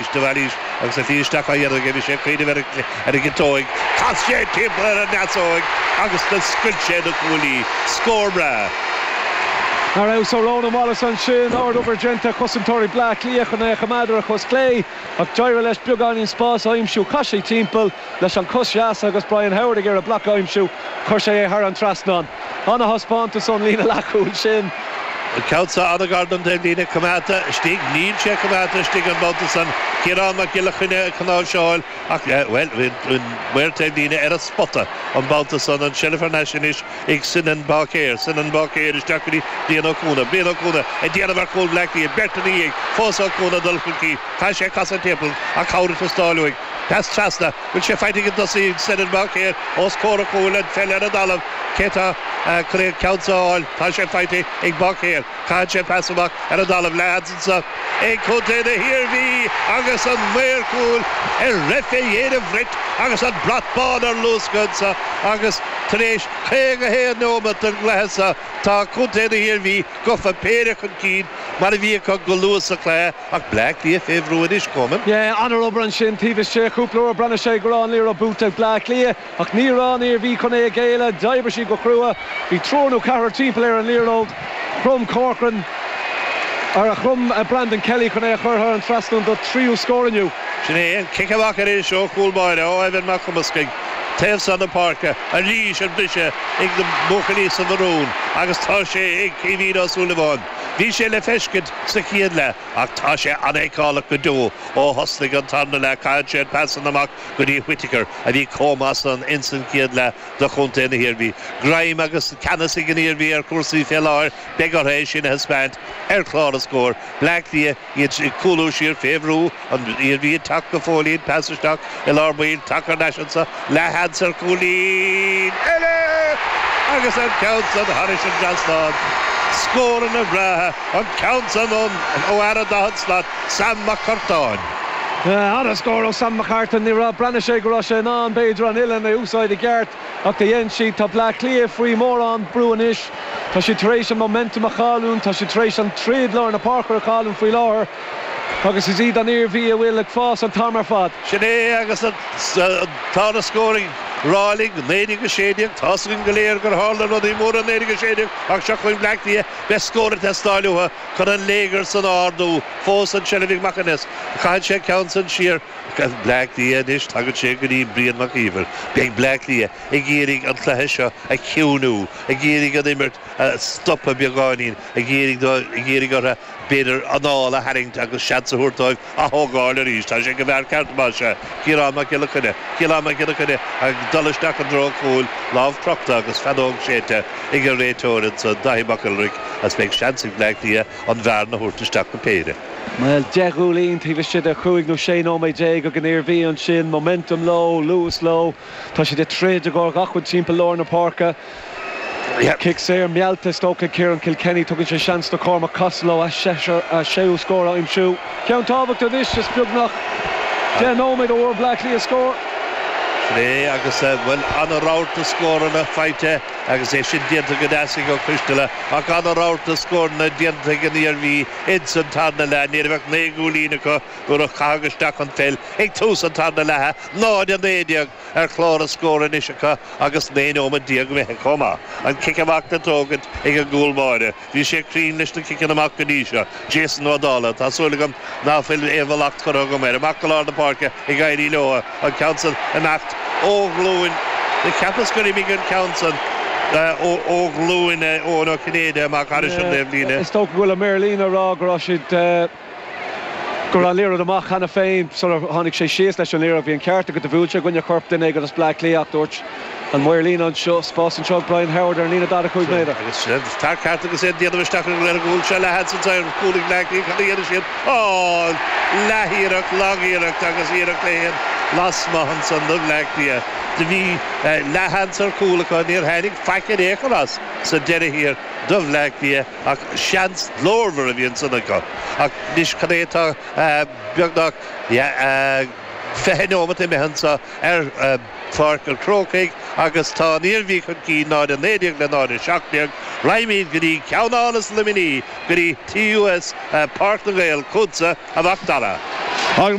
Is de Bhailís agus a shlí isteach á dhéanamh aige. Bhí sé ag cuimhneamh ar an gciotóig. Chas sé timpeall ar an ndeasóig agus do scoilt sé na cuaillí. Scór breá. Arís ó Ronan Wallace ansin. Ard-obair déanta ag cosantóirí Bleá Cliath chun é a choimeád ar a chos chlé ach d'éirigh leis beagáinín spáis a aimsiú. Chas sé timpeall. Leis an cos dheas agus Brian Howard ag iarraidh bloc a aimsiú, chuir sé é thar an trasnán. Ana-thaispeántas ón líne leathchúil sin. Cabhsa fhada gar don taobhlíne coimeádta istigh. Níl sé coimeádta istigh an babhta san. Ciarán Mac Giolla Chainnigh ag cnáimhseáil ach, bhuel, bhí an maor taobhlíne ar an spota an babhta san. An tseilbh thar n-ais anois ag Senan Báicéir. Senan Báicéir isteach go dtí Brian Ó Cuana. Brian Ó Cuana ag déanamh ar chúl Bhleá Cliath. Beirt ina dhiaidh fós Ó Cuana ag dul chun cinn. Chaith sé casadh timpeall ach cabhair ag teastáil uaidh. Pas trasna, bhfuil sé faighte ag an dtosaí Senan Báicéir os comhair an chúil an pheil ar an dtalamh cé atá chun an ceann seo a fháil tá sé faighte ag Báicéir caitheann sé pas amach ar an dtalamh leathsheans anso ag Contae na hIarmhí agus an maor cúil ag rith fé dhéin an bhrait agus an brat bán ar luascadh ansa agus tar éis 51 neomat den gcluiche sa tá Contae na hIarmhí gofa péire chun cinn mar a bhí acu go luath sa cluiche. Ach Bleá Cliath fé bhrú anois, Coman. Yeah, an-obair ansin taobh istigh. Cúpla uair breathnaigh sé go raibh an liathróid buaite ag Bleá Cliath, ach ní raibh an Iarmhí chun é a ghéilleadh. D'oibrigh siad go crua. Bhí triúr nó ceathrar timpeall ar an liathróid. Chrom Corcoran, ar, chrom Brandon Kelly chun é a chur thar an trasnán don tríú scór inniu. Sin é, an cic amach arís ó chúl báire ó Evan Mac Cumascaigh, taobh seo na páirce, arís an briseadh ag na buachaillí sa mharún agus tá sé ag Caoimhín Ó Súilleabháin. Bhí sé le feiscint sa chéad leath ach tá sé an-fheiceálach go deo ó thosnaigh an tarna leath caithfidh sé an pas san amach go dtí Whittaker a bhí chomh maith san ins an chéad leath do Chontae na hIarmhí. Greim agus ceannas ag an Iarmhí ar chúrsaí fé láthair beidh ortha é sin a thaispeáint ar chlár na scór. Bleá Cliath. Iad ag cúlú siar fé bhrú an Iarmhí ag teacht go fóillín, pas isteach i lár baill, taca lena ais anso, leathsheans ar chúilín eile! Agus an ceann san thairis an dtrasnán! Scór ana-bhreá, an ceann san ón ó fheara daichead slat, Sam Mac Artáin. An-scór ó Sam McCartan. Ní raibh, breathnaigh sé go raibh sé in ann b'fhéidir an uilinn a úsáid i gceart. Ach do dhein siad. Tá Bleá Cliath faoi mórán brú anois. Tá siad tar éis an momentum a chailliúnt. Tá siad tar éis an troid lár na páirce a chailliúnt faoi láthair agus is iad an Iarmhí a bhfuil ag fás an t-am ar fad. Sin é agus tá na scóir ag rá linn, 19-16. Tá's againn go léir gur tharla rudaí móra in 19-16 ach seo chugainn Bleá Cliath. Beidh scór ag teastáil uathu chun an léigear san a ardú fós an tseilbh ag Mac Aonghuis. Caitheann sé an ceann san siar. Agus Bleá Cliath anois, tagann sé go dtí Brian Mac Íomhair. Beidh Bleá Cliath ag iarraidh an cluiche seo a chiúiniú, ag iarraidh an imirt a stopadh beagáinín, ag iarraidh orthu, b'fhéidir, anáil a tharraingt agus seans a thabhairt dóibh ath-thógáil arís. Tá sé go mear ceart má sea. Ciarán Mac Giolla Coinne. Ciarán Mac Giolla Coinne ag dul isteach i dtreo cúil, lámh crochta agus feadóg séidte ag an réiteoir ansan, Dáithí Mac Giolla Rua, agus beidh seans ag Bleá Cliath. an bhearna a thabhairt isteach go péire. Bhuel, deich gcúilín taobh istigh de chúig nó sé nóiméad déag ag an Iarmhí ansin. Momentum leo, luas leo. Tá siad ag troid i gcomhair gach rud timpeall lár na páirce. Cic saor meallta is dócha ag Ciarán Cill Chainnigh. Tugann sé seans do Chormac Costello, a séú scór a aimsiú. Ceann tábhachtach anois is beagnach deich nóiméad ó bhfuair Bleá Cliath scór. Sin é agus, bhuel, an-rabharta scóranna faighte. Agus é sin déanta go deas ag Ó Coistealla, ach an-rabharta scóranna déanta ag an Iarmhí ins an tarna leath, ní raibh ach naoi gcúilín acu nuair a caitheadh isteach an pheil ag tús an tarna leatha, 0-19 ar chlár an scóir anois acu agus naoi nóimead déag imithe chomh maith. An cic amach á thógaint ag an gcúl báire. Bhí sé cruinn leis na ciceanna amach go dtí seo, Jason Ó Dálaigh. Tá súil agam ná fuil aon mhallacht curtha agam air. Amach go lár na páirce ag éirí leo, an ceann san ag imeacht ó ghlúin. Cheapas gur imigh an ceann san ó ghlúin Eoin Uí Chinnéide amach thar an taobhlíne. Is dócha go bhfuil an maor líne ag rá go raibh siad. go raibh an liathróid amach cheana féin sar a tháinig sé síos leis an liathróid. Bhí an ceart agat, do bhuail sé i gcoinne chorp duine éigin as Bleá Cliath ach dúirt an maor líne anseo, spás anseo ag Brian Howard ar an líne daichead a cúig méadar. Agus sin tarth ceart agus é ag déanamh isteach ar an réir an gcúl seo le hAddson Tyrell agus cúl ag Bleá Cliath. Cad a dhéanfaidh siad? Oh! Leath-iarracht, lag-iarracht agus iarracht é fhéin lasmuigh ansan do Bhleá Cliath. Do bhí leath-sheans ar chúl acu, níor tháinig faic in aon chor as sa deireadh thiar do Bhleá Cliath. Ach seans glórmhar a bhí ansan acu. Ach anois cad é atá beagnach fiche neomat imithe anso i bPáirc an Chrócaigh agus tá an Iarmhí chun cinn 0-19 le 0-17. Raghaimíd go dtí ceannáras Luimní, go dtí TUS Páirc na nGael, chútsa, a Mhacdara. Ag